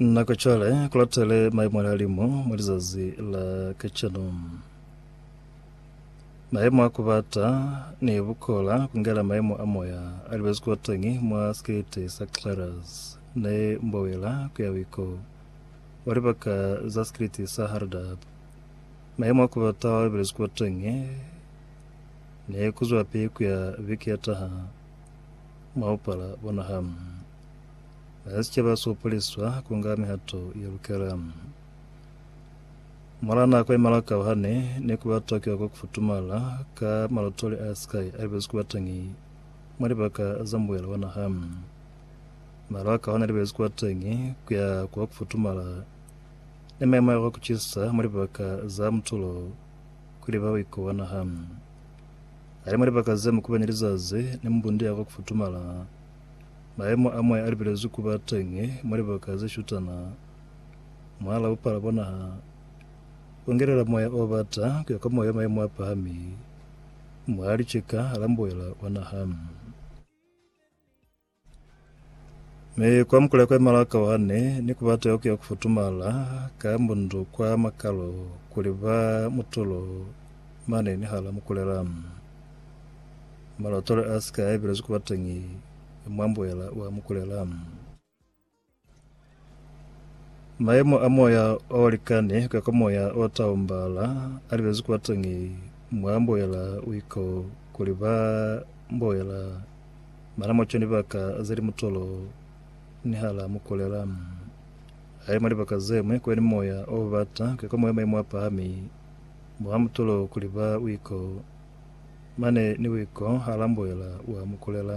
Nako cwale kulatele maemo a lihalimu mwa lizazi la kacenu. Maemo a kubata ni bukola kungela maemo a moya a libezi kuba teñi mwa sikete sa Clarus ne mbowela kuya wiko wa libaka za sikete sa Hardab. Maemo a kubata wa belezi kuba teñi ne kuzwapi kuya biki ya taha. Mwa bupala bona ha na ni sicaba sopoliswa kunga mihato ye lukela. Mora nako ye malakao ha ne ni kuba Tokyo kwa kufutumala ka malotoli a Sky a libezi kuba teñi mwa libaka za mbuela wa naha. Maru a kahona libezi kuba teñi kuya kwa kufutumala ni maimo a kwa kucisa mwa libaka za mutulo kuli ba uiko wa naha. Hae mwa libaka ze mu kopanya lizazi ni mbundi ya kwa kufutumala, mayemo a moya a lipelezwi ku ba teñi mwa libaka ze shutana mwahal'a bupala bwa naha, ku ngelela moya o bata ku ya kwa moya mayemo a pahami mwa licika la mbuela wa naha. Mi kwa mukula kwa malaka wane, ni kubata yo kuya kufutumala ka mbundu kwa makalo kuli ba mutulo mane ni hala mukulela. Malotolo a sika a ibelezwi kubatangi mwa mbuela wa mukulela. Mayemo a moya o likani kukako moya o taumbala a libezi kwateñi mwa mboela uiko kuli ba mboela mana mwa cwani baka ze li mutolo nihala mukulela. Haili mwa libaka zemwi kwani moya o bata kukako moya mayemo a pahami mwa mutolo kuli ba uiko mane ni uiko hala mboela wa mukulela.